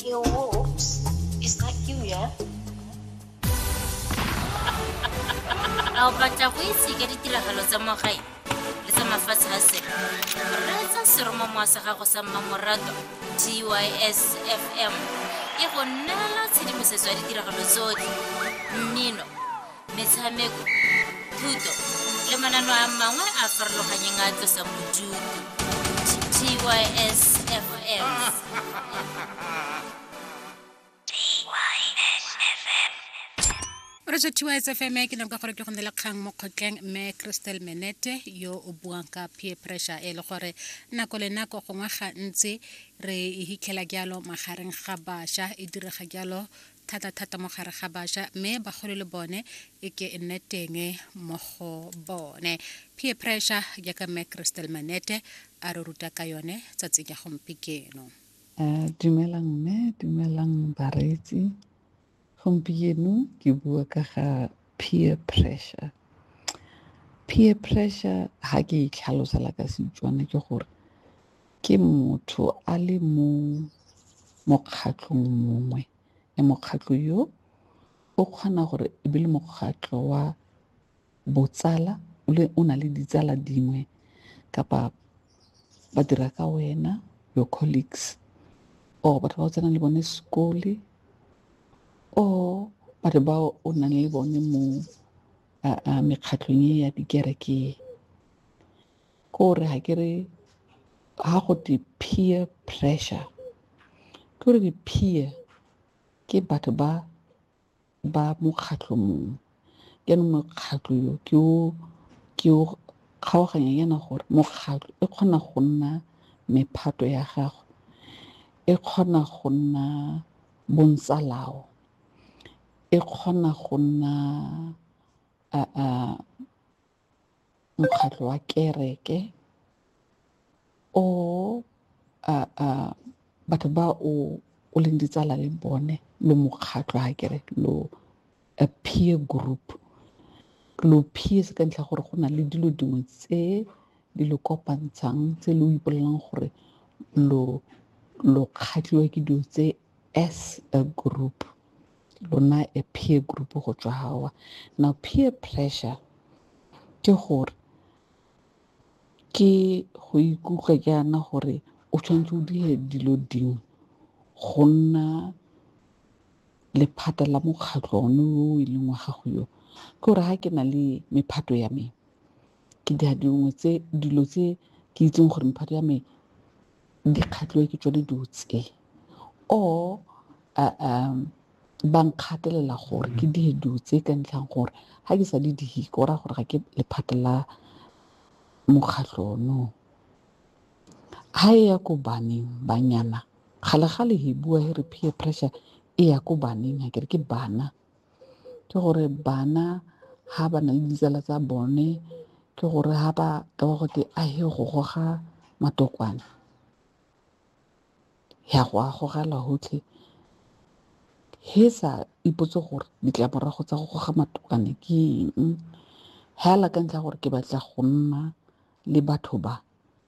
Yo, whoops. Is that you, yeah? a o batla go itse ka ditiragalo tsa mo gae le tsa mafatshe a sele reetsa seromamowa sa gago sa mmamorato tys fm e go neela tshedimosetso ya ditiragalo tsotlhe mmino metshameko thuto le manano a mangwe a farologanyeng a tlosang bodutu tysfm o re tswa tiwa sfm ke nako gore ke go ne le kgang mo kgotleng mme crystal menete yo o buang ka peer pressure e le gore nako le nako gongwe gantsi re e hitlhela jalo magareng ga bašwa e direga jalo thata-thata mo gare ga bašwa mme bagolo le bone e ke e nne teng mo go bone peer pressure jaaka mme crystal manete a re ruta ka yone tsatsi ya gompikeno eh, dumelang mme dumelang bareetsi gompieno ke bua ka ga peer pressure peer pressure ha ke itlhalosela ka setswana ke gore ke motho a le mo mokgatlhong mongwe le mokgatlho yo o kgona gore e be le mokgatlho wa botsala o na le ditsala dingwe kapa ba dira ka wena your colleagues or batho ba o tsenang le bone sekole or batho ba o nang le bone mo mekgatlhong e ya dikereke. ke gore ga ke re ga go te peer pressure ke gore di-peer ke batho ba ba mokgatlho mongwe ke no mokgatlho yo ke o ke o kgaoganya yana gore mokgatlho e kgona go nna mephato ya gago e kgona go nna bontsalao e kgona go nna a a mokgatlho wa kereke or batho ba o o leng ditsala le bone lo mokgatlho ha kere lo a peer group lo peers ka ntlha gore go na le dilo dingwe tse di lo kopantshang tse lo ipolelang gore lo lo kgatlhiwa ke dilo tse as a group lona a peer group go tswa gawa now peer pressure ke gore ke go ikutlwa ke ana gore o tshwanetse o dire dilo dingwe go nna lephata la mokgatlho one o e leng wa gago yo ke gore ga ke na le mephato ya me ke dira dingwe tse dilo tse ke itseng gore mephato ya me di kgatlhiwe ke tsone dilo tse or ba nkgatelela gore ke dire dilo tse ka ntlhang gore ga ke sa di dihe ke o raya gore ga ke lephata la mokgatlho ono. Ga e ya ko baneng banyana gale gale he bua he re peer pressure e ya ko baneng akere ke bana. ke gore bana ha ba na le ditsala tsa bone ke gore ha ba ka ba gote a he go goga matokwane ya go a gogela gotlhe he sa ipotse gore ditlamorago tsa go goga matokwane ke eng hela ka ntlha gore ke batla go nna le batho ba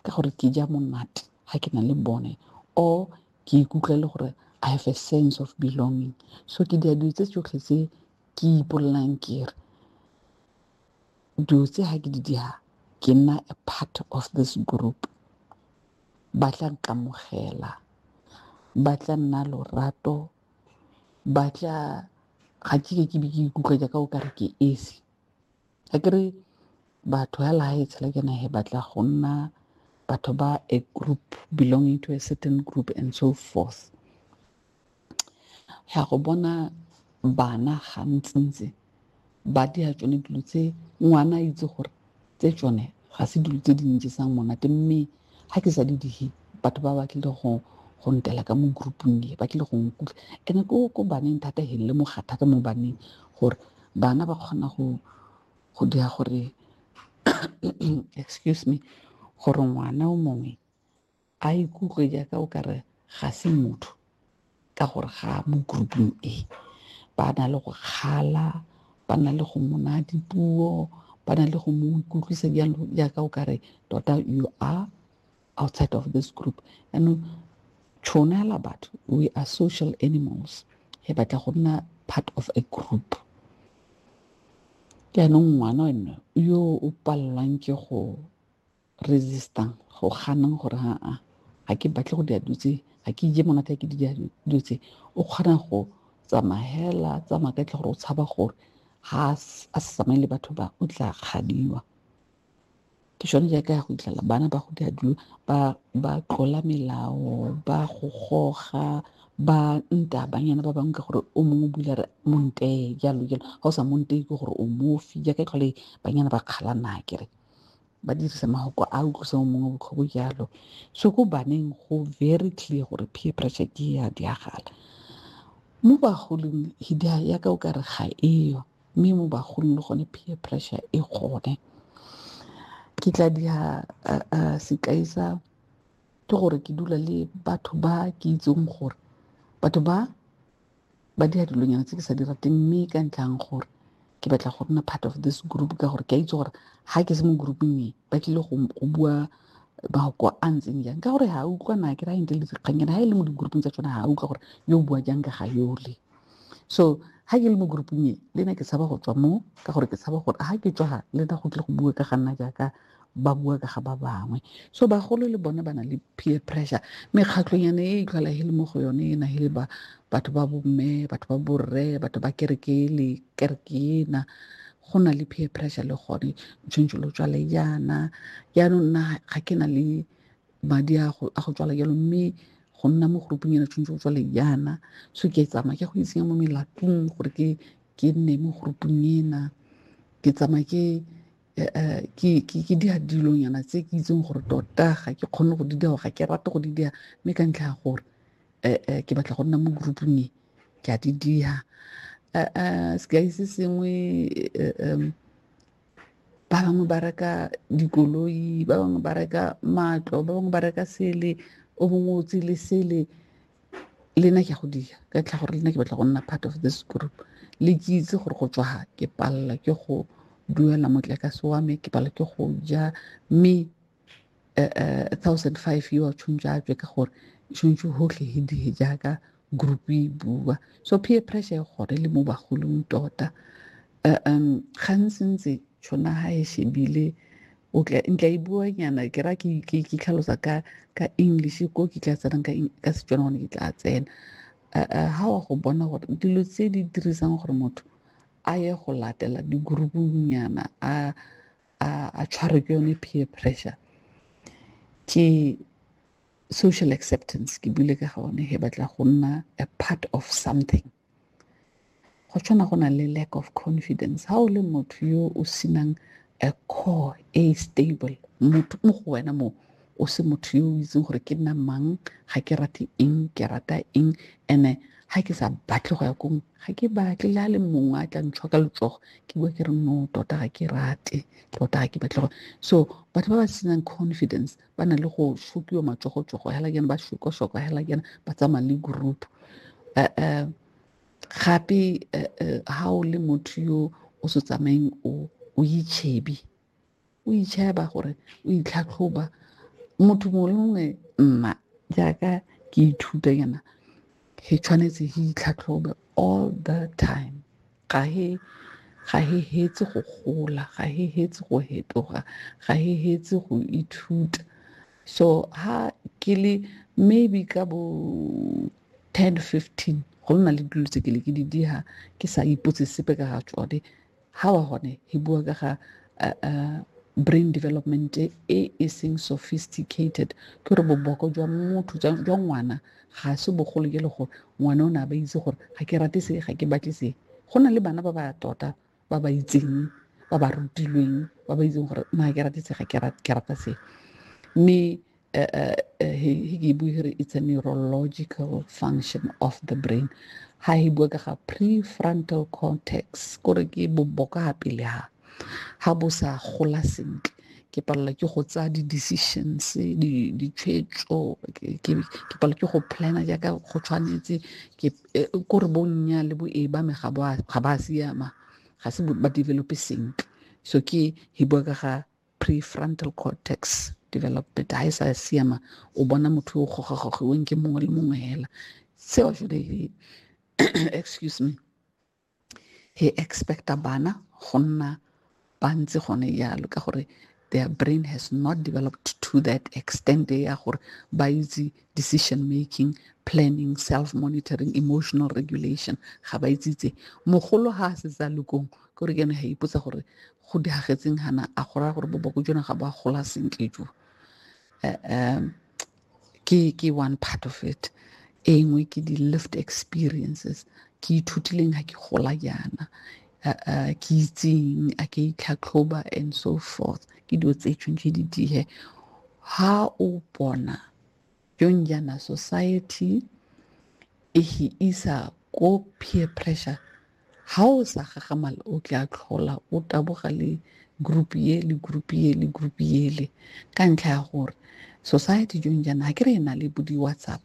ka gore ke ja monate ga ke na le bone or ke ikutlwa e le gore I have a sense of belonging so ke dira dilo tse tsotlhe tse ke ipolelang ke re dilo tse ga ke di dira ke nna a part of this group ba tla nkamogela ba tla nna lorato ba tla ga ke ke be ke ikutlwa jaaka o kare ke esi akere batho hela ha e tshela ke na he batla go nna batho ba a group belonging to a certain group and so forth ya go bona bana ga ntsintsi ba di a tsone dilo tse ngwana a itse gore tse tsone ga se dilo tse di ntjesang monate mme ga ke sa di dihe batho ba ba tlile go go ntela ka mo groupung e ba tlile go nkutlwa and ko ko baneng thata he le moga thata mo baneng gore bana ba kgona go go dira gore excuse me gore ngwana o mongwe a ikutlwe jaaka o kare ga se motho ka gore ga mo grouping e ba na le go kgala ba na le go mona dipuo ba na le go mo ikutlwisa jalo jaaka o kare tota you are outside of this group anong tšhono ya la batho we are social animals e batla go nna part of a group jaanong ngwana ene yo o palelwang ke go resistang go ganang gore aa ga ke batle go dira dilo tse ga ke ije monate ke dira dilo tse o kgona go tsamagela tsamaya ka tle gore o tshaba gore ga a sa tsamaye le batho ba o tla kgadiwa ke sone jaaka ya go itlhela bana ba go dira dilo ba tlola melao ba go goga ba nta banyana ba bangwe ka gore o mongwe bula re montee jalo jalo ga o sa montee ke gore o mofi jaaka e tlhole banyana ba kgalana kere ba dirisa mahoko a utlwisa o mongwe botlhoko jalo so ko baneng go very clear gore peer pressure ke ya diagala mo bagolong hidia ya ka o ka re ga eyo mme mo bagolong le gone peer pressure e gone ke tla dia sekai sa ke gore ke dula le batho ba ke itseng gore batho ba ba dira dilonyana tse ke sa di rateng mme ka ntlhang gore ke batla go nna part of this group ka gore ke a itse gore ga ke se mo grouping e ba tlile go bua mafoko a ntseng jang ka gore ga a utlwana ke ra ente le dikgannyana ga e le mo di-grouping tsa tsone ga a utlwa gore yo o bua jang ka ga yole so ga ke le mo grouping e le na ke tshaba go tswa mo ka gore ke tshaba gore ga ke tswa ga le na go tlile go bua ka ga nna jaaka ba bua ka ga ba bangwe so bagolo le bone ba na le peer pressure mekgatlhonyane e itlhola e le mo go yone e nagele ba batho ba bomme batho ba borre batho ba kereke le kereke ena go na le peer pressure le gone tshwanetse lo tswale jaana jaanong nna ga ke na le madi a go tswala jalo mme go nna mo groupung ena tshwanetse go tswale jaana so ke tsamaya ke go itsenya mo melatong gore ke ke nne mo groupung ena ke tsamaya ke eh, eh, ke ke ke dia dilonyana tse ke itseng gore tota ga ke kgone go di dia ga ke rate go di dia mme ka ntlha ya gore eh, ke batla go nna mo groupung e ke a di dia sekai se sengwe ba bangwe ba reka dikoloi ba bangwe ba reka matlo ba bangwe ba reka sele o bongwe o tsele sele le nna ke a go dira ka tlha gore le nna ke batla go nna part of this group le ke itse gore go tswa ke palela ke go duela motlakase wa me ke palela ke go ja mme eh, eh, thousand five yo a tshwanetse a tswe ka gore tshwanetse gotlhe e die jaaka group e bua so peer pressure e gone le mo bagolong tota um gantsi ntse tšhona ga e shebile o tla ntla e bua nyana ke ra ke ke ke tlhalosa ka ka english ko ke tla tsena ka ka setswana gone ke tla tsena ha wa go bona gore dilo tse di dirisang gore motho a ye go latela di-groupung nyana a a a tshwarwe ke yone peer pressure ke social acceptance ke bile ka gone he batla go nna a part of something go tshwana go na le lack of confidence ha o le motho yo o senang a core e stable motho mo go wena mo o se motho yo o itseng gore ke nna mang ga ke rate eng ke rata eng ene ga ke sa batle go ya kong ga ke batle le a le mongwe a tla ntshwa ka letsogo ke bua ke re no tota ga ke rate tota ga ke batle go so batho ba ba senang confidence ba na le go shokiwa matsogo-tsogo hela kena ba shoko-shoko hela kena ba tsamaya le group um gape ha o le motho yo o se tsamayeng o o itšhebi o itšheba gore o itlhatlhoba motho mongwe le mongwe nna jaaka ke ithuta yana he tshwanetse he itlhatlhobe all the time ga he ga he hetse go gola ga he hetse go hetoga ga he hetse go ithuta so ha ke le maybe ka bo 10 15 go nna le dilo tse ke le ke di diha ke sa ipotse sepe ka ga tsone ha wa gone he bua ka ga uh, uh, brain development e e seng sophisticated ke gore boboko jwa motho jwa ngwana ga se bogolo e le gore ngwana o ne a ba itse gore ga ke rate se ga ke batle se go na le bana ba ba tota ba ba itseng ba ba rutilweng ba ba itseng gore ma ke rate se ga ke rate ke rata se mme eh, eh, eh, he ke bue gore it's a neurological function of the brain ha e bua ka ga prefrontal cortex kore ke boboka pele ha ga bo sa gola sentle ke palelwa ke go tsaya di-decisions ditshwetso ke palelwa ke go planner jaaka go tshwanetse ke e, ko re bonnya le bo e ba me ga ba siama ga se ba develope sentle so ke e bua ka ga prefrontal cortex development ha e sa siama o bona motho o gogagogiweng ke mongwe le mongwe fela seo jone excuse me he expecta bana go nna ba ntse gone jalo ka gore their brain has not developed to that extent ya gore ba itse decision making planning self monitoring emotional regulation ga ba itsitse mogolo ga a setsa lokong ke gore ke ne ga ipotsa gore go diagetseng gana a go raya gore boboko jone ga ba gola sentle jo um ke ke one part of it e nngwe ke di lived experiences ke ithutileng ga ke gola jaana ke itseng a ke itlhatlhoba and so forth ke dilo tse tshwanetse di dihe ha o bona yong jaana society e he isa ko peer pressure Ha o sa gagamala o tla tlhola o taboga le group ye le group ye le group yele ka ntlha ya gore society jong jaana ga ke re e na le bo di-whatsapp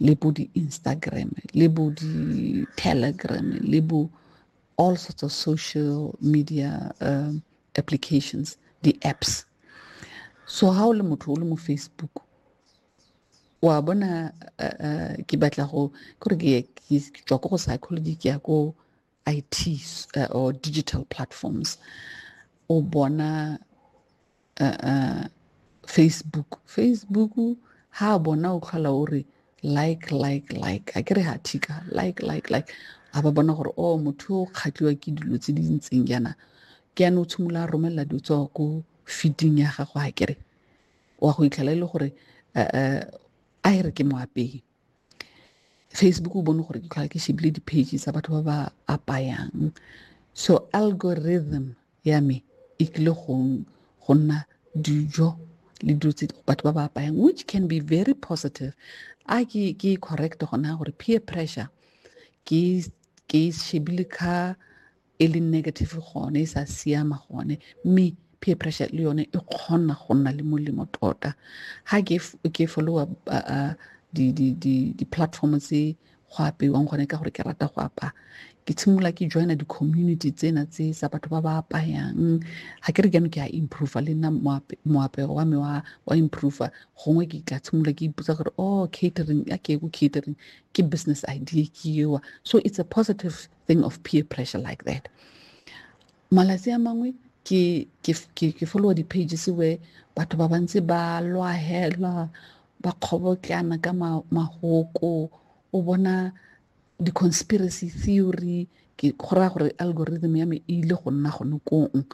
le bo di-instagram le bo di-telegram le bo all sorts of social media um, applications di-apps so ha o le motho o le mo facebook wa bona uh, uh, ke batla go kore ke tswa ko go psychology ke ya ko it uh, or digital platforms o bona uh, uh, facebook facebook ha bona o tlhola o re like like like a ke re ha thika like like like a ba bona gore o oh, motho o kgatliwa ke dilo tse di ntseng jaana ke yana o tshimolola a romelela dilo tsa ko feeding ya gago a kere wa go itlhela e le gore a e re ke mo apeye facebook o bone gore ke tlhola ke shebile di-page tsa batho ba ba apayang so algorithm ya me e tlile go nna dijo le dilo tse batho ba ba apayang which can be very positive a ke ke correct gona gore peer pressure ke ke shebile ka e le negative gone e sa siama gone mme peer pressure le yone e kgona go nna le molemo tota ga ke followa di-platform tse go apeiwang gone ka gore ke rata go apaya ke tshimolola ke joina di-community tsena tse tsa batho ba ba apayang ga ke re jano ke a improva le nna moapego wa me wa improva gongwe ke tla tshimolola ke ipotsa gore o oh, catering a ke ko catering ke business idea ke ewa so it's a positive thing of peer pressure like that malatsi a mangwe ke ke ke followa di-pages where batho ba bantsi ba lwahelwa ba kgobotlana ka mahoko o bona di-conspiracy theory ke go raya gore algorithm ya me e ile go nna gone kong